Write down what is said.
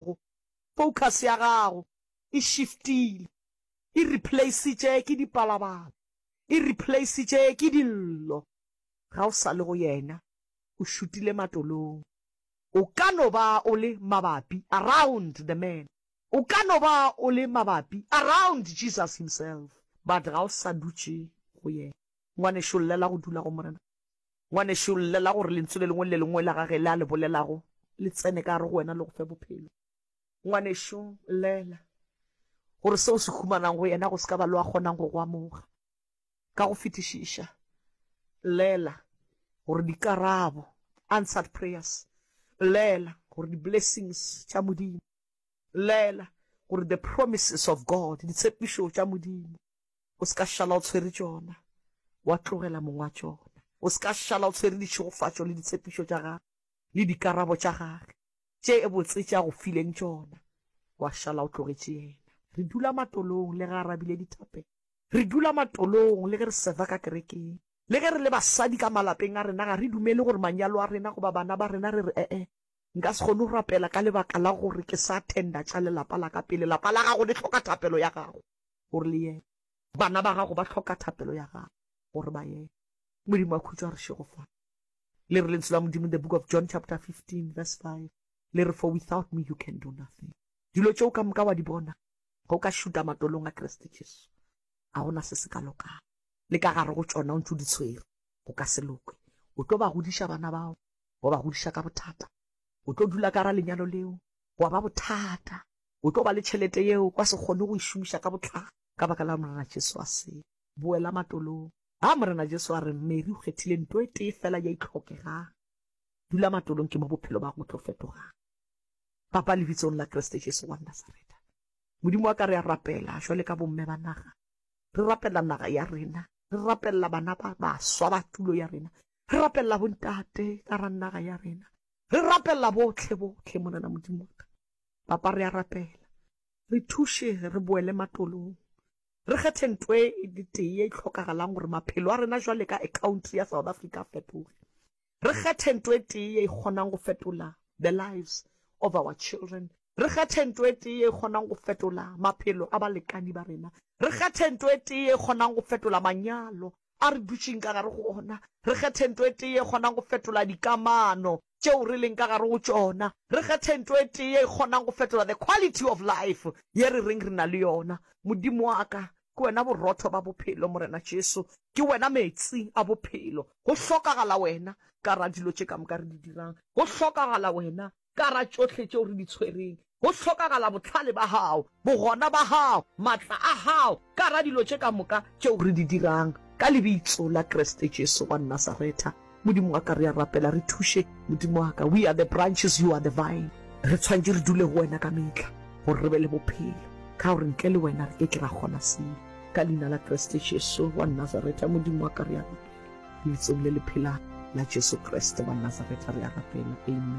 gago. Focus ya gago e shiftile, e replaceitše ke dipalabala, e replaceitše ke dillo. Ga o sa le go Yena, o šutile matolong. O ka no ba o le mabapi, around the man. O ka no ba o le mabapi, around Jesus Himself, but ga o sa dutše go Yena. Ngwanešu, llela go dula go Morena. Ngwanešu, llela gore lentswe le lengwe le le lengwe la gage le a le bolelago le tsene ka gare go wena le go fe bophelo. Ngwanešu, llela gore seo se humanang go yena go se ka ba lo a kgonang go go amoga. Ka go fetišiša, llela gore dikarabo, answered prayers, llela gore di-blessings tša Modimo, llela gore the promises of God, ditshepišo tša Modimo, o se ka šala o tshwere tšona, wa tlogela mong wa tšona. O se ka šala o tshwere ditšhegofatšo le ditshepišo tša gagwe le dikarabo tša gagwe tše botse tše a go fileng tšona, wa šala o tlogetše yena. Re dula matolong le ge a rabile dithape, re dula matolong le ge re seva ka kerekeng, le ge re le basadi ka malapeng a rena. Ga re dumele gore manyalo a rena goba bana ba rena re re, E-e, nka se kgone go rapela ka lebaka la gore ke sa attenda tša lelapa la ka pele. Lapa la gago le hloka thapelo ya gago. O re le yena. Bana ba gago ba hloka thapelo ya gago gore ba yeye. Modimo a khutšo a re šego fana. Le re lentswe la Modimo in the book of John chapter 15 verse 5. Le re for without me you can do nothing. Dilo tšeo ka moka wa di bona ga o ka šuta matolong a Kreste Jesu. Ga gona se se ka lokago. Le ka gare go tšona o ntse o di tshwere. Go ka se lokwe. O tlo ba godiša bana bao. Wa ba godiša ka bothata. O tlo dula ka ra lenyalo leo. Gwa ba bothata. o tlo ba le tšhelete yeo o ka se kgone go e šomiša ka botlalo ka baka la Morena Jesu a se boela matolong. A Morena Jesu a re, Mary, o kgethile nto e tee fela ye e tlhokegang. Dula matolong, ke mo bophelo ba go tlo fetogang. Papa, lebitsong la Kriste Jesu wa Nasareta, Modimo wa ka, re a rapela jwale ka bomme ba naga. Re rapela naga ya rena, re rapella bana ba baswa ba tulo ya rena, re rapella bontate ka ra naga ya rena, re rapella botlhe botlhe, Morena Modimo wa ka. Papa, re a rapela, re thuše re boele matolong. Re kgethe nto e le tee ye e hlokagalang gore maphelo a rena jwale ka ecounty ya South Africa a fetoge. Re kgethe nto e tee ye e kgonang go fetola the lives of our children. Re kgethe nto e tee ye e kgonang go fetola maphelo a balekani ba rena. Re kgethe nto e tee ye e kgonang go fetola manyalo a re dutšeng ka gare go ona. Re kgethe nto e tee ye e kgonang go fetola dikamano tšeo re leng ka gare go tšona, re kgethe nto e tee ye e kgonang go fetola the quality of life ye re reng re na le yona. Modimo wa ka, ke Wena borotho ba bophelo, Morena Jesu, ke Wena meetse a bophelo. Go hlokagala Wena ka gare ga dilo tše ka moka re di dirang. Go hlokagala Wena ka gare ga tšohle tšeo re di tshwereng. go hlokagala bohlale ba gago, bogona ba gago, matla a gago, ka gare ga dilo tše ka moka tšeo re di dirang. Ka Lebitso la Kriste Jesu wa Nasaretha, Modimo wa ka, re a rapela, re thuše, Modimo wa ka. We are the branches, You are the vine. Re tshwanetše re dule go Wena ka mehla, gore re be le bophelo, ka gore ntle le Wena re ke ke ra kgona selo. Ka Leina la Kriste Jesu wa Nasaretha, Modimo wa ka, re a rapela, Lebitsong le le phelago la Jesu Kriste wa Nasaretha, re a rapela. Amen.